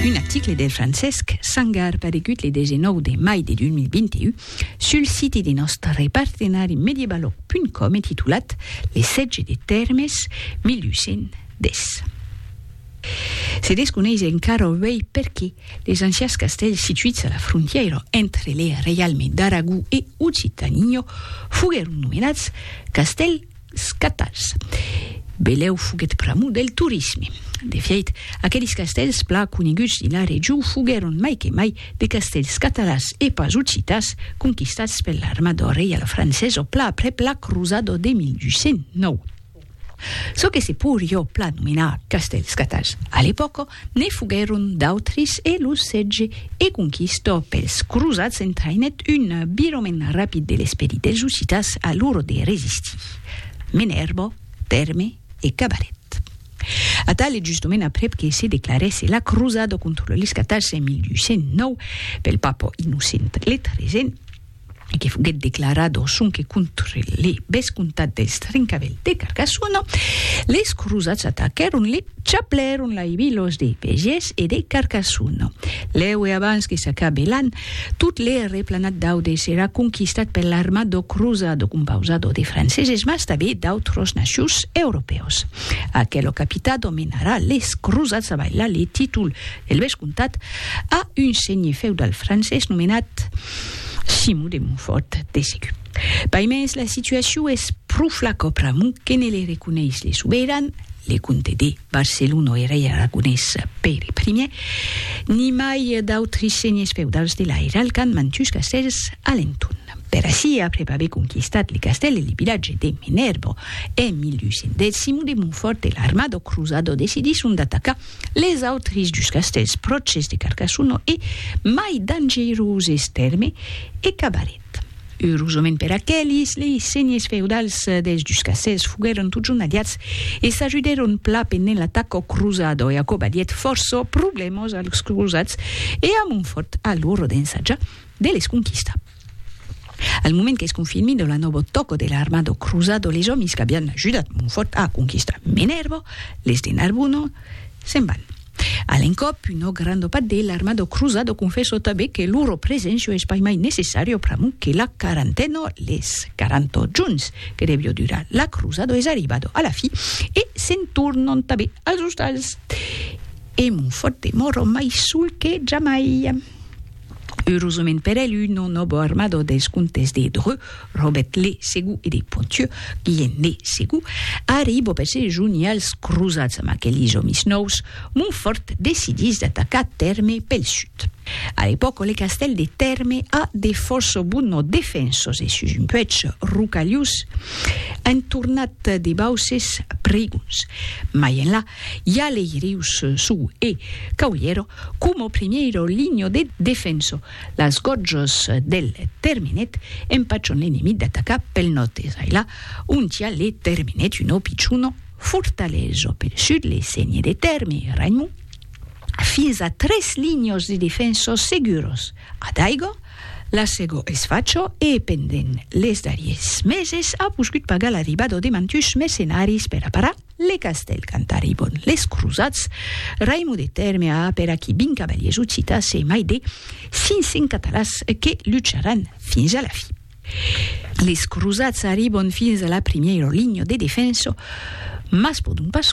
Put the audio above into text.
Un article de Francesc Sangar paregut le 19 de mai de 2021 sul siti de nòstre partenari mediebalog.com e titulat Le sètge de Tèrmes 1810. Se desconeis encara uèi perqué les ancians castèls situits a la frontièira entre le reialme d'Aragó e Occitània foguèron nomenats castèl Scatals. Belèu foguèt pr'amor del torisme. De fièit, aquelis castèls plan coneguts dins la region foguèron mai que mai de castèls catalans e pas occitans conquistats per l'armada reiala francesa plan aprèp la crosada de 1209. Çò que se poiriá plan nomenar castèls scatals a l'epòca Ne foguèron d'autris e lo sètge e conquista pels crosats entraïnèt un virament rapid de l'esperit dels ussitas a l'ora de resistir. Menèrba, Tèrme e Cabaret. Atal e justament aprèp que se declarèsse la crosada contra los catarses en 1209 pel papa Innocent le Tresent, e que foguèt declarado sonque contre le vescomtat dels Trincavèl de Carcassona, les crosats ataquèron le chaplèron Laibilòs de Vegés e de Carcassona. Lèu e abans que s'acabe l'an, tot le replanat d'Aude serà conquistat per l'armado crosado compausado de franceses mas tanben d'autros nacius europèus. Aquelo capitado menarà les crosats a bailar le títol El bèth comtat a un senhir feudal francés nomenat Simon de Montfort, TCQ. Pas mens la situacion es pro flac ò pr'amor que ne le reconeis le soberan, le comte de Barcelona e rei aragonés Pere Ier, ni mai d'autres senhers feudals de l'airal qu'an mantus castèls a l'entorn. Per aicí, aprèp aver conquistat le castèl e le vilatge de Menerbo en 1210, Simon de Montfort e l'armada o cruzada decidisson d'atacar Les autres dus castèls pròches de Carcassona e mai dangeroses tèrme e cabaret. Eurosament per aqueles, lei senhes feudals dels dus castèls foguèron totjorn aliats e s'ajudèron pla pe ne l'atac au cruzado e aquò badièt fòrça problèmas als cruzats e a Montfòrt a l'ora d'ensajar de les conquistar. Al moment qu'es confirmi de la nobo tòco de l'armado cruzado les òmis qu'abian ajudat Monfòrt a conquistar Menèrbo, les de Narbonno, se'n van. A l'encòp, un òc gran dopat de l'armado cruzado confesso tanben que loro presencio es pas mai necessario pr'amor que la quarantena, les quaranta jorns que devió durar la cruzado es arribada a la fi e se'n tornan tanben als ostals. E Monfòrt demòra mai sol que jamai. Eurosament per el, un non òbo armado dels comtes de Dreux, Robert le Segur e de Ponthieu, Guilhem le Segur, arribo per se junir als crosats amb aquelis òmis nòus, Montfòrt decidís d'atacar Tèrme pel sud. A l'epòca, le castèl de Tèrme a de fòrça bonos defensors e sus un puèch rocalhós entornat de bauses prigons. Mai enlà, i a lei rius Sou e Caulhièro, Como primièiro linho de defenso, las gòrjos del terminet empachan l'enemic d'atacar pel nòrd e sailà ontià le terminet un òpi chunò fortalejo pel sud le sègne de Tèrme e Raimon fins a tres linhos de defensos seguros a Daigò, la Segó e Sfachò e pendent les darriers meses a poscut pagar l'arribada de mantuns mercenaris per aparar. Le castèl cantari bon les crosats, Raimon de Tèrme a per aquí vint cavaliers occitas e mai de 500 catalans que lucharàn fins a la fi. Les crosats arribon fins a la primièro linha de defensa, mas pòdon pas